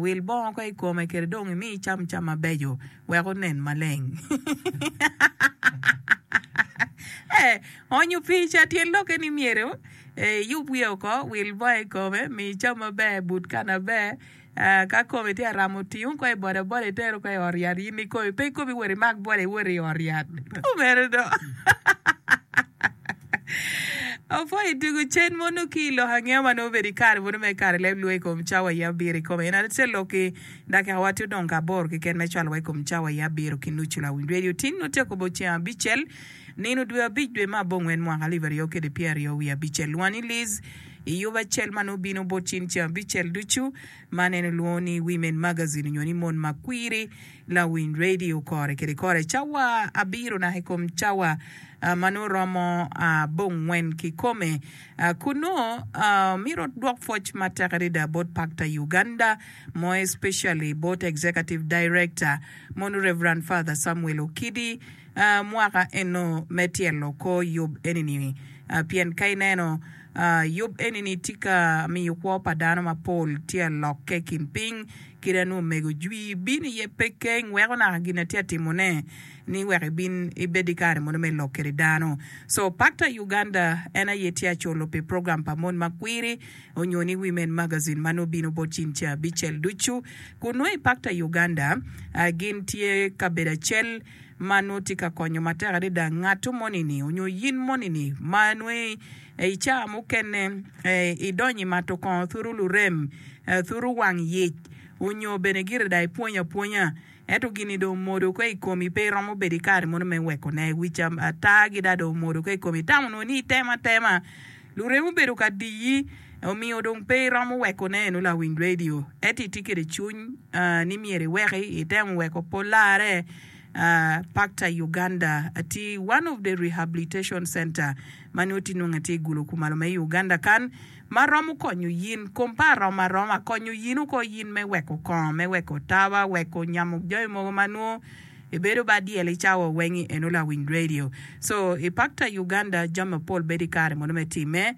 Wil bongo ko i kome kede dong imi icam cam mabeco wek onen maleng. Onyo pica, Tyen lokke ni myero iyub wiye oko, wil bongo i kome, mi icam maber, but kani aber. Ka komi tye ka ramo oti, wun ko i bodaboda iter woko i ot yat in ikomi. Pe ikomi wot imak boda iwot i ot yat. Apwoyo i tugo cen mo nongo ki i lok angeya ma nongo obedo i kare mono me kare leb lue i kom cawa aye abiro i kome. En aye acel lok ki dakika wa tye odong ka aboro keken me cwalo wa i kom cawa aye abiro ki nucu lawiny rwedi oting otyeko bo ceng abicel nino dwe abic dwe me abongwen mwaka alip aryo kede pyer aryo wiye abicel lwongo ni Liz i yub acel ma nongo bino bot cin ceng abicel ducu ma nene lwongo ni Women Magazine nyo ni Mon ma Kwiri Lawiny radio kore kede kore cawa abiro naka i kom cawa ma nongo romo abongwen kikome. Kun nongo myero odwok pwoc matek adada bot Pactor Uganda, more especially bot Executive Director mono Rev. Father Samuel Okidi, mwaka eno me tyelo kor yub eni-ni. Pien ka ineno, yub eni-ni tye ka miyo kwo pa dano mapol tye ka lokke i kin piny, kit-a nwo omego jwi bino iye pe keng weko naka gin atye ka timone ni wek ibin ibed ki kare mono me lok kede dano. So, Pactor Uganda en aye tye ka culo pi program pa Mon ma Kwiri onyo ni Women Magazine ma nwo bino bot cin ca abicel ducu. Kun nwo i Pactor Uganda gin tye kabedo acel. Man nongo tye ka konyo matek adada ngatu moni-ni onyo in moni-ni ma nongo i caa mukene i donyo i mato kongo turu lurem, turu wang yec onyo bene gire dong i pwonyo apwonya ento gini dong omodo ko i komi pe i romo bedo i kare mono me weko ne, wic ata gi dong omodo ko i komi itamo nongo ni itemo atema. Lurem obedo ka diyi, omiyo dong pe iromo weko neno lawiny redio. Ento itye kwede cwiny ni myero iweki, itemo weko pol larre. Pakta i Uganda atye i one of the rehabilitation center ma nongo tye nongo atye i gulo kumalo me i Uganda kan ma romo konyo yin. Kom pa aroma aroma konyo yin oko yin me weko kongo, me weko taba, weko nyamo jami mogo ma nwo. Ibedo bad dyel icawa wengi eno lawiny radio. So i pactor Uganda jami mapol bedo i kare mono me time.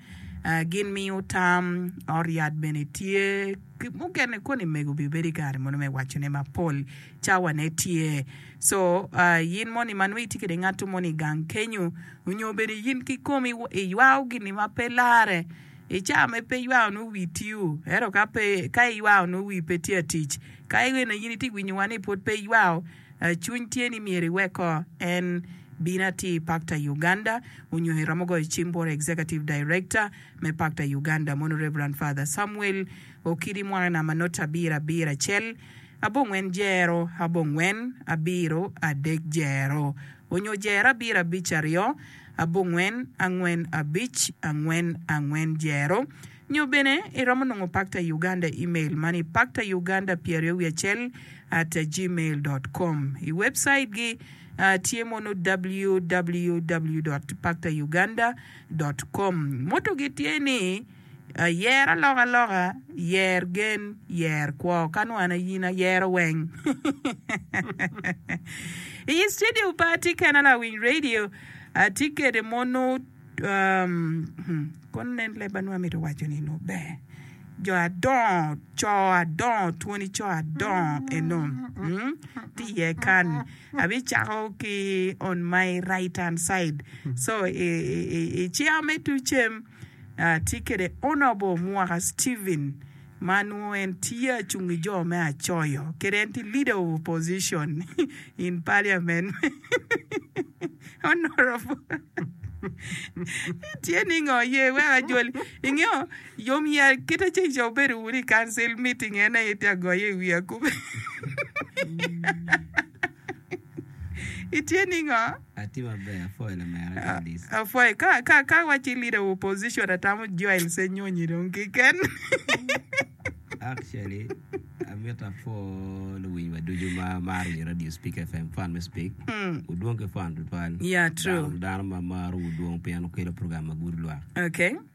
Gin miyo tam, ot yat bene tye ki mukene koni mego bi bedo i kare mono me waco ne mapol cawa ne tye. So yin moni ma nongo itye kede ngato moni igang kenyu onyo bene yin kikomi iywao gini ma pe lare. I caa me pe iywayo nwo wii tiu, ento ka pe ka iywayo nwo wii pe tye atic. Ka ene in iti winyo wa ni pwod pe iywayo, cwiny tye ni myero iwek ko en bino ati i pakta i Uganda onyo iromo goyo cim bot Executive Director me pakta i Uganda mono Reverend Father Samuel Okidi mwaka namba noti abiro abiro acel abongwen jero abongwen abiro adek jero onyo jero abiro abic aryo abongwen angwen abic angwen angwen jero, nyo bene iromo nongo Pacta Uganda email man i pactauganda pyeraryo wiye acel at gmail dot com. I webcait gi tye mono www dot pactauganda dot com. Motto gi tye ni. Yer alokaloka, yer gen, yer kwo. Kan wano aye in ayero weng. I yi studio pa atye kena lawiny radio atye kede mono um hmm kono nen leb ma nongo amito waco ni nongo ber jo adongo co adongo twoni co adongo eno hmm tye iye kan abicako ki on my right hand side so i i i chair me tucem Atye kwede Honourable Mwaka Steven ma nongo en tye acung ki jo me acoyo kede en tye leader of opposition in parliament Honourable itye ningo ye weko ajoli ingeyo yom ya kite ceng ca wubedo wunu i council meeting en aye tye agoyo i wiya kube. Itye ningo? Atye maber apwoyo lamera Gladys. Apwoyo ka ka ka wa ci leader of opposition atamo Joel Senyonyi dong kiken. Actually, amito apwo luwinywa ducu ma maro nyo radio Speak FM, fan me Speak. Mm. Wudwong ki fan tutwal. Yeah, true. Dano, dano ma marowu dwong pien wukelo program ma gudo lwak. Okay.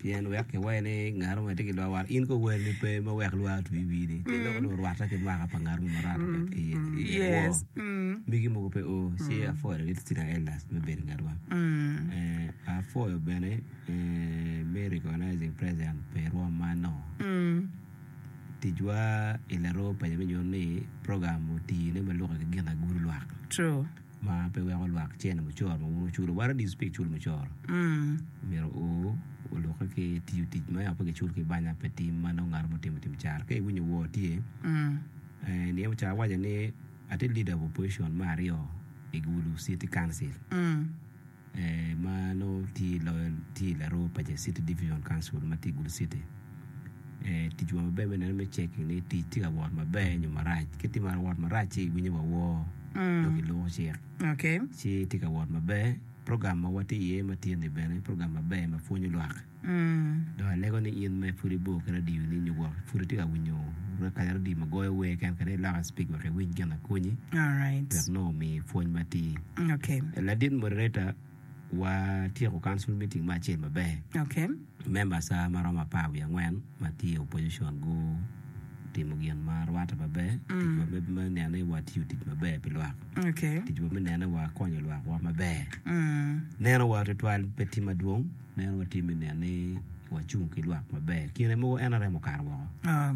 Pien wek kiwayi ni ngat mo aye tye ki lwak war, in kower ni pe me wek lwak otwi i wii-ni, pien dok onongo orwatte ki mwaka pa ngat mo ma rwatte pe i iye ni. I iye woo, megi mogo pe o, ci apwoyo larit Cinnaelas me bedo ngatwa. Apwoyo bene me recognizing present pa i rwom man no. Ticwa i laroo paco me nyuto ni program oti ne ma lukke ki gin agur lwak. True. ma pe weko lwak cene mucoro ma wun wuculo what are these pig cul mucoro myero o olukke ki tiyo tic ma yako pe ki cul ki banya pe tim ma nongo ngat mo timo tim caro ka iwinyo wor tye niye mucoro awaco ni ati leader of opposition me aryo i gulu city council ma nongo tye i loyo tye i laroo paco city division council ma tye i gulu city ticwa maber me neno me cek ni tic tye ka wot maber nyo marac ka tye ka wot marac ci iwinyo wa woo dong iluko cik ci tye ka wot maber program ma watye iye matyen-ni bene program maber ma pwonyo lwak. Dong alego ni in ma pud ibor ki radio ni nyo wok pud itye ka winyo kanya radio ma goyo wer ken kene ilok i speak wek iwiny gin akonyi wek nongo omi pwony matir. Ladit moderator watyeko council meeting me acel maber. Members a ma romo apar wiye angwen ma tye opposition gutimo gin ma rwatte maber. Ticwa me nene watiyo tic maber pi lwak. Ticwa me nene wakonyo lwakwa maber. Neno wa tutwal pe tye madwong. Meno watye me neno ni wacung ki lwak maber. Kine mogo NRM okato woko.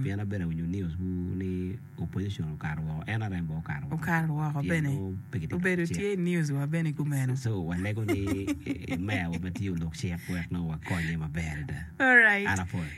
Pien an bene awinyo news gu ni opposition okato woko, NRM bene okato woko. Okato woko bene. Obedo tye i news wa bene kumeno. So walego ni mayor wa matye olok cik wek nongo wakonye maber adada. Alright. An apwoyo.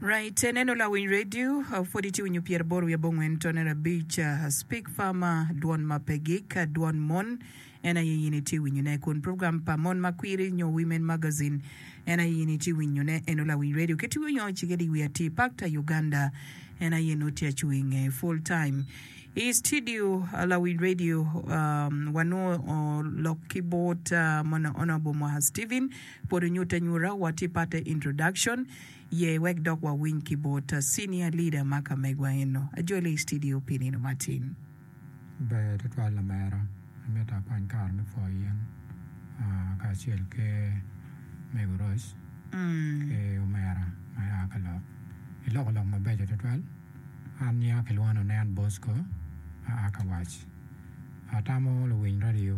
Right neno lawiny radio pwod itye winyo pyera boro wiye abongwen tone arabic speak farmer dwon ma pe gik dwon mon en aye in itye winyo ne kun program pa mon ma kwiri nyo women magazine en aye in itye winyo ne eno lawiny radio kit iwi onyo cike di iwi atir pak ta Uganda en aye nut tye acu inge full time I studio lawiny radio wa nwo lok ki bot mon honorable mwaka Steven pwod onyute anyuta wa tye parte introduction. Ye wek dok wawiny ki bot Senior Leader ma ka megwa eno. Ajole i citidio pi nino matin. Ber tutwal lamera. Amito akwany kare me pwoyo in kacel ki Mego Rose ki omera ma ya ka lok. Iloko lok mabeco tutwal. An nyinga kilwongo ni nen Bosco ma a ka wac. Atamo luwiny radio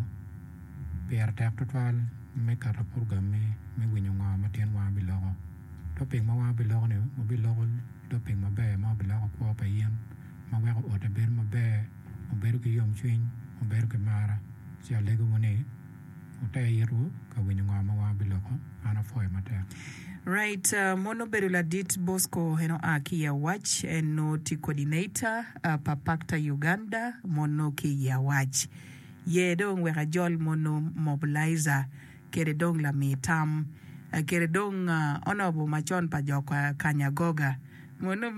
pire tek tutwal me keto purogemme me winyo ngo ma tin wanga biloko. Topic ma wanga biloko-ni wabiloko topic maber ma wabiloko kwo pa in ma weko ote bedo maber, mubedo ki yomcwiny, mubedo ki mar, ci alegowu ni. Ote itwu ka winyo ngo ma wan biloko man apwoyo matek. Right mon obedo ladit Bosco en oa ki i awac en noo tye coordinator pa pactor Uganda mon noo ki i awac yee dong wek ajol mon noo mobilizer kede dong lami tam kede dong onobo macon pa jo kanya goga mon noo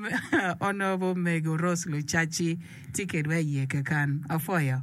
onobo mego Rose Lucaci tye kedwa i yee keken apwoyo.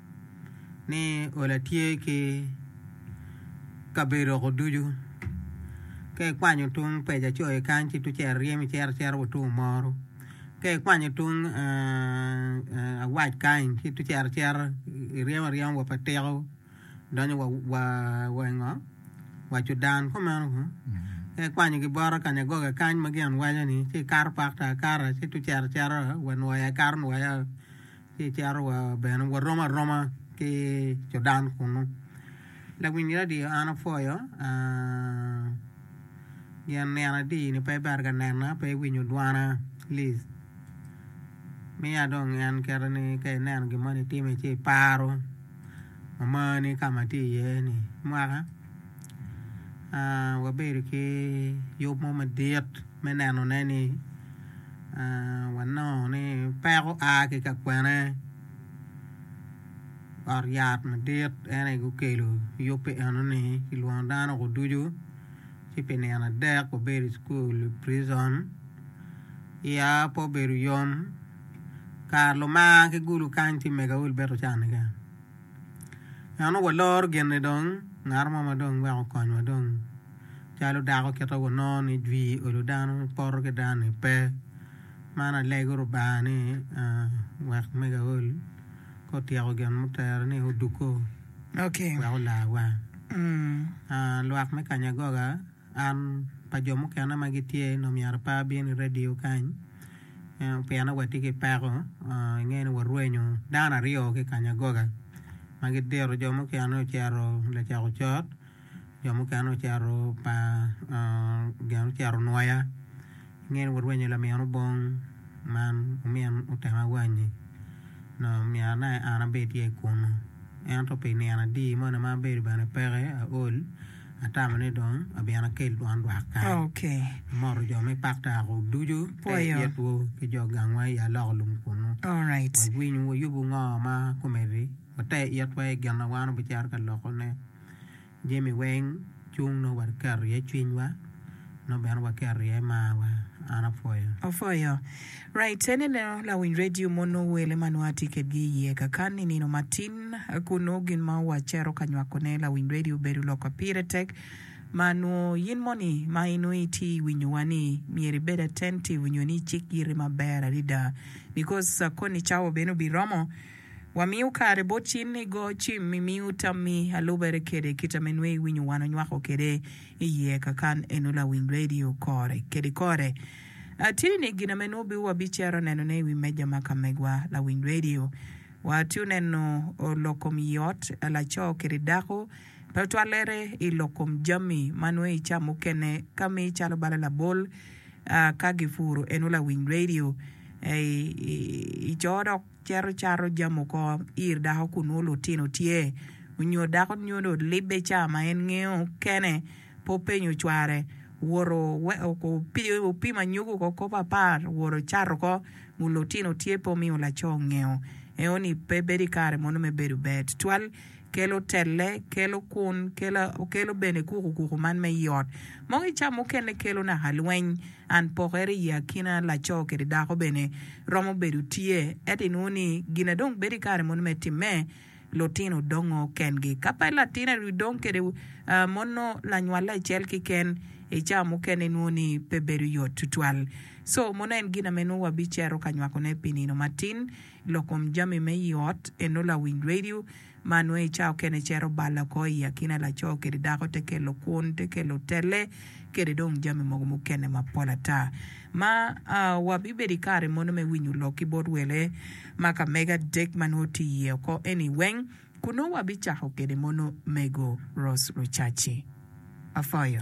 ni ola tye ki kabedo ko ducu ka ikwanyo tung peja co i kany ci tung cel ryem icero cero wa tung omoro ka ikwanyo tung awac kany ci tung cero acera iryemo aryema wa pa tiko donyo wa i ngo wa cudan ko meno ko ka ikwanyo ki bota kanyagoga kany ma gin waco ni ci ikato pak to akata ci tung cero acera wa nwoya ikato nwoya ci cito wa bene warom aroma ki Jordan kunu lawiny radio an apwoyo gin nino adi ni pe iber ka nena pe iwinyo dwana lic miya dong en kite ni ka ineno gin mo ni time ci iparo amani ka ma atye iye ni mwaka wabedo ki yub mo madit. me nenone ni wanongo ni peko a ki ka kwene ot yat madit en aye gukelo yubbe enoni kilwongo dano woko ducu ci pi nino adek wabedo i cukul i prison iya pe obedo yom kare luma ki gulu kany ci mega wel bene ocano keken. Eno walor gin-ni dong, ngat mo ma dong weko okonywa dong. Calo dako kite wanongo ni jwi olo dano poto ki dano-ni pe. Man alego Lubanga ni wek mego aol ka otyeko gin mutere ni odukko wek olarwa. Lwak me kanyagoga. An pa jo mukene ma gitye nongo myero apa abin i radio kany pien watye ki peko inge ni warwenyo dano aryo ki kanya goga ma gidito jo mukene ocito lacok ocot jo mukene ocito pa gin ocito nwoya inge ni warwenyo lamin obong man omin otemo awanyi nongo myero nongo an abe tye kunu ento pi nino adi moni ma abedo bene peke aol Atamo ni dong abin akel dwon dwak kany. Amoto jo me pak Taakuk ducu, pe itwu ki jo gangwa i aloko lum kunnu. Wawiny wayubu ngo ma kumeddi, wate itwa i gin ma wan wabicito ka lokone. Jami weng cung nongo waketo iye cwinywa, nongo bene waketo iye marwa. An apwoyo. Raite ni neno lawiny redio mono wele ma nongo atye kedgi i iye kakan i nino matin kun nongo gin ma wacero ka nywakone lawiny redio bedo lok ma pire tek ma nongo in moni ma i nongo itye i winyowa ni myero ibed attentive nyo ni icik yiti maber adada because koni cawa bene obiromo wamiyo kare bot in ni go cim i miyo tammi alubere kede kita me nongo iwinyo wan onywako kede i iye kakan eno lawiny redio kore kede kore. Atye ni gin ame nwobi wabicero nenone i wi meja ma ka megwa lawiny redio. Watye oneno lok kom i ot laco kede dako, twatwalere i lok kom jami ma nwe i ca mukene ka mi calo bala labol ka gipuro eno lawiny redio i co dok. Cito cato jami oko ir dako kun nongo lutino tye nyo dako nyo dong libbe ca ma en ngeyo kene pe openyo cware owoto opimo anyogi oko kop apar owoto cato oko kun lutino tye pe omiyo laco ngeyo eno ni pe bedo ikare mono me bedo ber tutwal kelo telle kelo kun kelo bene kuku kuku man me iot moki ca mukene kelo naka lweny. An pokere i akina laco kede dako bene romo bedo tye, ento inwongo ni gina dong bedo i kare moni me timme? Lutino dongo kengi. Ka pe latin aryo dong kede mono lanywale acel kiken, i caa mukene inwongo ni pe bedo yot twatwal. Co mono en gina me nwo wabicero ka nywakone pi nino matin. Lokom jami me i ot, eno lawiny radio, ma nongo i cawa okene cito bal oko i akina laco kede dako te kelo kwun, te kelo telle, kede dong jami mogo mukene mapol ata. Ma wabibedo i kare mono me winyo lok ki bot wele ma ka mege adek ma nongo tye iye oko eni weng, kun nongo wabicako kede mono Mego Rose Rucaci. Afoyo.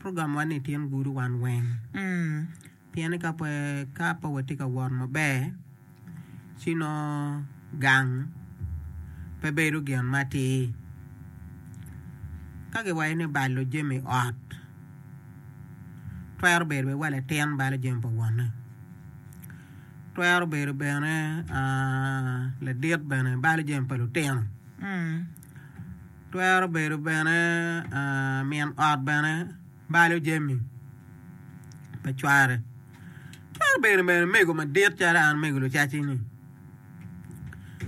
Program wa ni tyen gudo wan weng pien ni ka pe ka pe watye ka wot maber ci nongo gang pe bedo gin matir. Ka giwaco ni balo jami ot twero bedo bene wa latin balo jami pa wonne twero bedo bene aa ladit bene balo jami pa lutino. Twero bedo bene min ot bene balo jami pa cware. Twero bedo bene mego madit calo an mego lucaci-ni.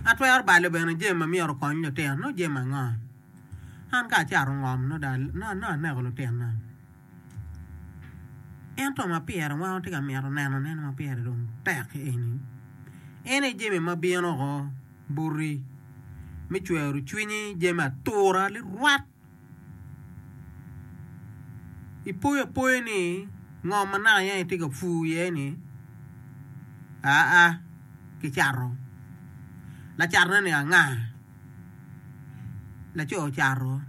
Atwero balo bene jami ma myero okony lutino. Nongo jami ango? An ka acato ngom nongo aneko lutina. Ento ma pire wan watye ka mito nenone ma pire dong tek eni, en aye jami ma bino woko boti me cwero cwinyi, jami atura lilwat. Ipoyo apoyo ni ngom ma naka iye itye ka pur iye ni aa kicato, lacatone ni anga? laco ocato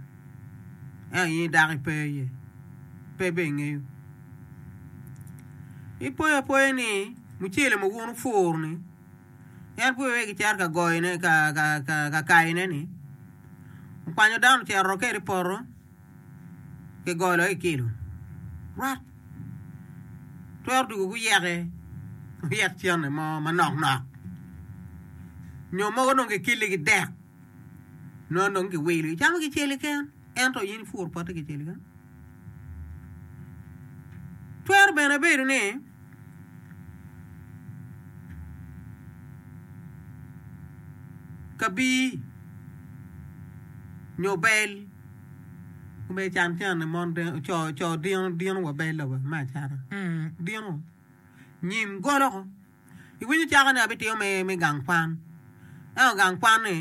ento in dako ipe iye pe bene ingeyo ipoyo apoya ni mucele ma wun wupuro ni en pud pe kicito ka goyone ka kayone ni okwanyo dano ocito kwede i poto. kigolo i kilo rwot twero dwogo guyeke guyek cene mo manok nok nyo mogo dong kikili ki dek nongo dong kiwilo icamo kicel keken ento in ipuro pote kicel keken twero bene bedo ni Kabir nyo bel me can cene mon co dino wa bel lobo me acata dino nyin golo ko iwinyo cakone abitimo me gang kwan ento gang kwan ni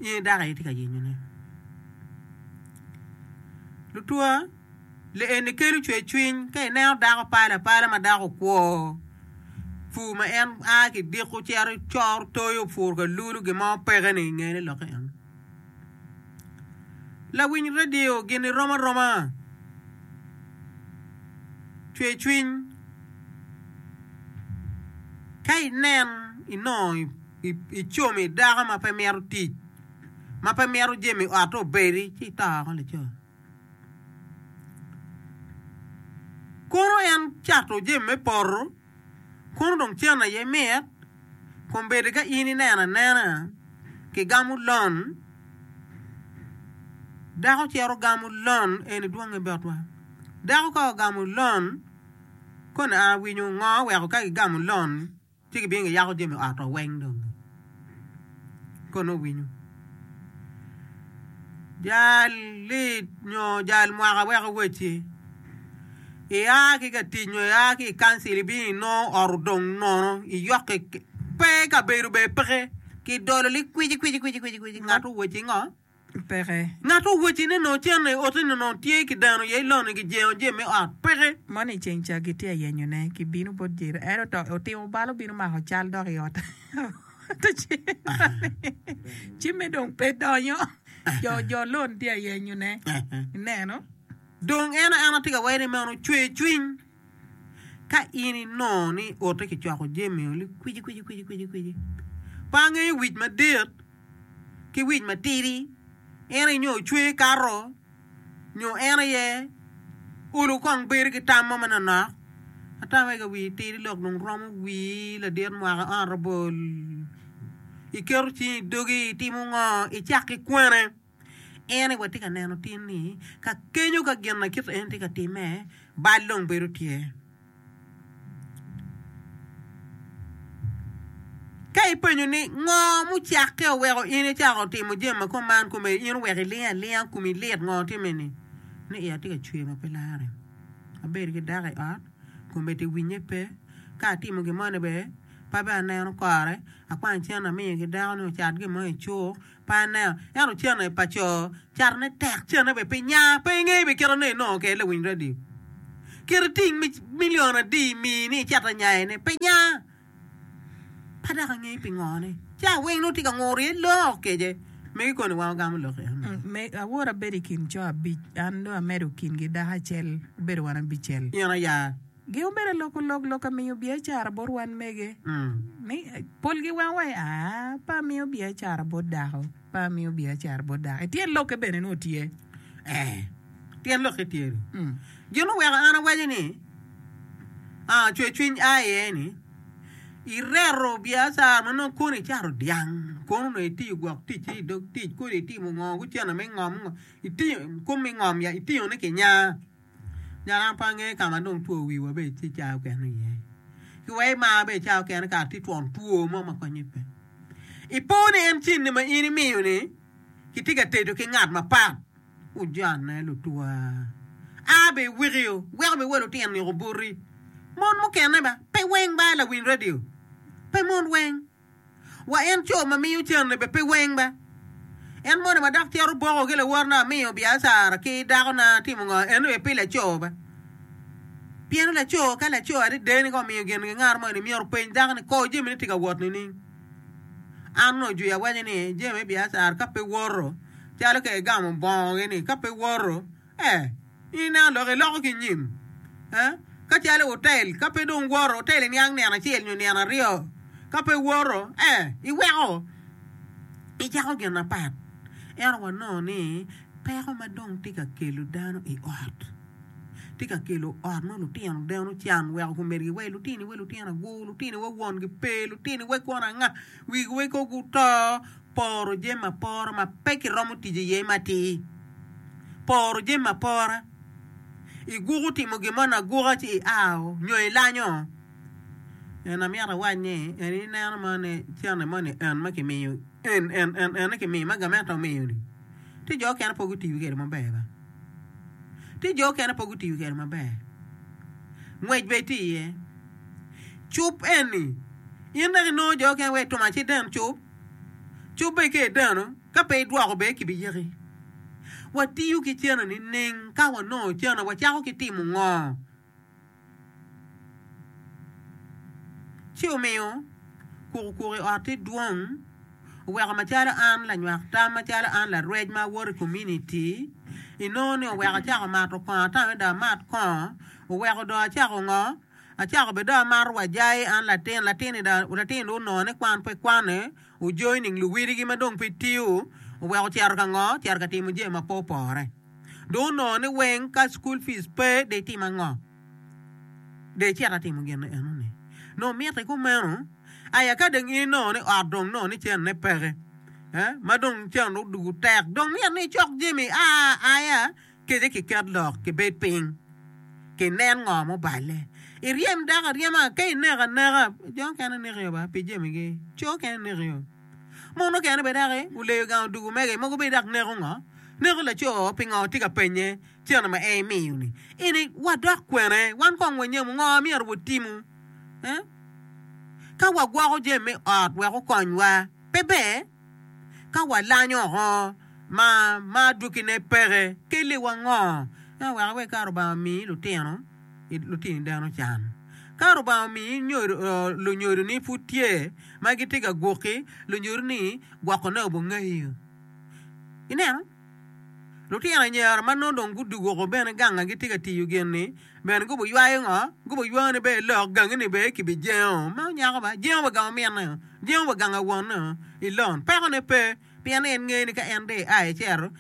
Nge dako aye tye ka yenyo ne. Lutwa le eni kelo cwer cwiny ka ineno dako pale apala ma dako okwo pur ma en a ki diko cito coro toyo opuro ka lulu gin mo peke ni inge ne lokke en. Lawiny radio gini rom aroma cwer cwiny ka inen inongo Icomi dako ma pe mito tic, ma pe mito jami otte obedi, ci ito oko laco. Kono en cato jami me poto, kono dong cen aye mit, kombeddi ka in ineno anena kigamo lon, dako cito gamo lon, eni dwonge botwa. Dako ka ogamo lon, koni awinyo ngo weko ka gigamo lon? Ci gibino giyako jami ot wa weng dong kono owinyo jal lit nyo jal mwaka wek owecci ia ki ka tic nyo ia ki i kancil ibino inongo ot odong nono iyok pe kabedo bene peke kidolo ni kwici kwici kwici kwici ngat owecci ngo. peke. Ngat owacci ni nongo cente i ote ni nongo tye ki dano aye longe ki jengo jemi me ot peke. Moni i ceng ca gitye ayenyo ne ki bino bot Jeri ento to otimo bal obino mako cal dok i ot te ciro ni jemi dong pe donyo jo jo lon tye ayenyo ne ineno. Dong en aena tye ka wero ni meno cwer cwiny. Ka in inongo ni i ote kicwako jami oli kwici kwici kwici kwici kwici, pe angeyo wic madit ki wic matidi, en aye nyo cwer kato nyo en aye olo kong bedo ki tam mo manonok, ata mege wi itidi lok dong romo wii ladit mwaka honorable iketo cingi i dogi itimo ngo? Icak ki kwene? En aye watye ka neno tin ni ka kenyo ka gin na kit eni tye ka timme, bal dong bedo tye. Ka ipenyo ni ngo mucakke oweko in icako timo jami ma kom man kome in oweko iling alinga komi lit ngo timme ni? Ni iya tye ka cwer ma pe lare, abedo ki dako i ot kome tye winye pe, ka atimo gin mo ni bene pe aneno kore, akwany cente amiyo ki dako ni ocat gin mo icuk, Pine, ento cene pa co catone tek, cene bene pe nya. Pe ingeyo bene kit anongo inongo kede lawiny radio. Kit iting milion adi imi ni icito nyayone, pe nya. Pe dok angeyo pingo ni ci aweng nongo tye ka nguro iye lok kece. Megi koni wa ogamo lok iye amege. Awoto abedo i kin co abic, an dong amedo kingi dako acel, wabedo wan abicel. In aya Gi obedo aloko lok lok amiyo biacara bot wan mege ni polgi wango wa ni aa pe amiyo biacara bot dako pe amiyo biacara bot dako i tyen lokke bene nongo tye ee tyen lokke tye ni gin oweko an awaco ni aa cwer cwiny a iye ni i reto biacara ma nongo kono i cato dyang kono nongo i tiyo gwok tic i dog tic kodi i timo ngo gucene me ngom ngo i tiyo kom me ngom ya i tiyo ne kinya. Nyo an pe angeyo ka ma dong two wiwa bedo tye cayo kene iye. Ki wek imar bedo cayo kene kara tye twon two mo ma konye pe. Ipo ni en cen-ni ma in imiyo-ni kitye ka tedo ki ngat mapat? Wujanne lutwa. A be iwikio weko be wa lutino niko boti. Mon mukene ba pe weng ba lawiny radio. Pe mon weng. Wa en co ma miyo canne be pe weng be. En moni ma dok cito boko ki lawotna amiyo biacara ki dakona timo ngo en be pe laco be. Pien laco ka laco adede ni ka omiyo gin gi ngat moni myero openy dako ni kor jami ni tye ka wot nining. An onongo jwi awaco ni jami me biacara ka pe woto calo ka igamo bongo gi ni ka pe woto In nen lok iloko ki nyim, ka calo i utel, ka pe dong iworo utel i niang nino acel nyo nino aryo, ka pe iworo, iweko icako gin mapat. Ento wanongo ni peko ma dong tye ka kelo dano i ot, tye ka kelo ot ma lutino deno can weko kumedigi wa i lutini, wa i lutino agur, lutini wa wongi pe, lutini wa kono anga, wigi wa kong guto. Poro jami apora ma pe kiromo tic iye matir. Poro jami apora. Iguko timo gin moni aguka ci iao nyo ilanyo? En amyero awac ni en ineno mo ni cene moni en ma kimiyo en en en ene kimiyo ma gamente omiyo-ni ci jo okene pe gutiyo kwede maber ba. Ci jo okene pe gutiyo kwede maber. Ngwec bene tye iye. Cub eni, in dok inongo jo okene wai tum aciden cub. Cobbe ki i dano, ka pe idwoko be ki bi yaki. Watiyo ki cene nining? Ka wanongo cene wacako ki timo ngo? Ci omiyo kuku kuku i ot ti dwong, oweko macalo an lanywak tam macalo an larwec ma awoto i kominiti, inongo ni oweko acako mato kongo ata mada amat kongo, oweko dong acako ngo? Acako bene dong amato wajai, an latin, latin-ni dong, latin-ni dong onongo ni kwan pe kwane, ojoining luwiligi ma dong pe tiyo, oweko ocito ka ngo? Ocito ka timo jami ma pe opore. Dong onongo ni weng ka cukul pic pe, de itim ango? De icit atimo gin enoni. Nongo mitte kumeno. Aya ka dong in inongo ni ot dong nongo ni cennene peke, ma dong cen odoko tek, dong myero ni icok jami aa aya. Kece kiket lok, kibed piny, kinen ngo muballe. Iryem dako aryema, ka ineko aneka, jo mukene nekio ba pi jamigi, co mukene nekio. Mon mukene bene daki guleyo gang odugu mege, mogo bene daki neko ngo, neko laco pingo tye ka penye cente ma en imiyo-ni. Eni wadok kwene? Wan kong wanyamu ngo ma myero watimu ka wagwoko jami me ot wek okonywa? Pe ber. Ka walanyo oko ma ma adwogine peke, kelliwa ngo me weko iwek kare Lubanga omi lutino lutini dano can? Ka Lubanga omi lunyodoni pud tye ma gitye ka gwoki, lunyodoni gwokone obongeyo. Ineno? Lutino anyira ma nongo dong gudwogo oko bene ganga gitye ka tiyo gin-ni bene gubiywayo ngo? Gubiywao ni ber lok gangini ber kibijengo ma onyako ba, jengo wa gang ominne oo, jengo wa gang awonne oo, i lon. Pekone pe, pien ni en ngeyo ni ka en dong ia icito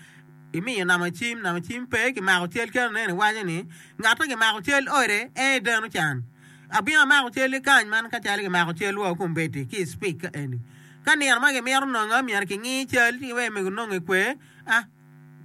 imiyo namba cim, namba cim pe kimako cal calo nen iwaco ni ngat ma kimako cal ode en aye deno can. Abino amako calli kany man ka calo kimako calwa wa kombeddi ki i cipika eni. Ka nino ma kimito nongo myero kingi cal ci wek omego nonge kwer, a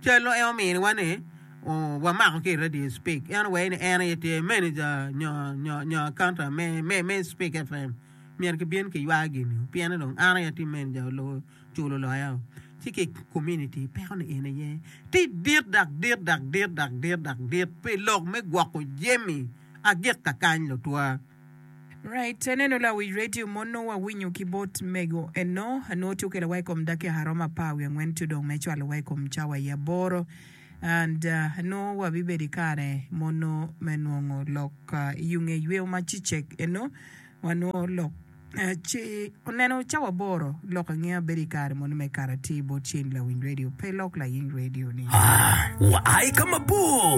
cal en ominiwa ni wamako ki i radio spik en owei ni en aye tye manager nyo nyo accountant me me me spik FM myero kibin kiywa gini o piene dong an aye atye manager olubo culo loya o ci ki community peko ni en aye ti dit dak dit dak dit dak dit dak dit pi lok me gwoko jemi agikka kany lutwa. Right ene no lawic radio mo nongo awinyo ki bot mego eno anongo tye okelo wa i kom dakika romo apar wiye angwen to dong me cwalo wa i kom cawa i aboro and nongo wa bibedo i kare mono me nongo lok i onge yweyo ma cicek eno wa nongo lok ci oneno cawa aboro lok angeya bedo i kare mono me karati bot ceng lawic radio pe lok laying radio ni. Wa aye ka mabor.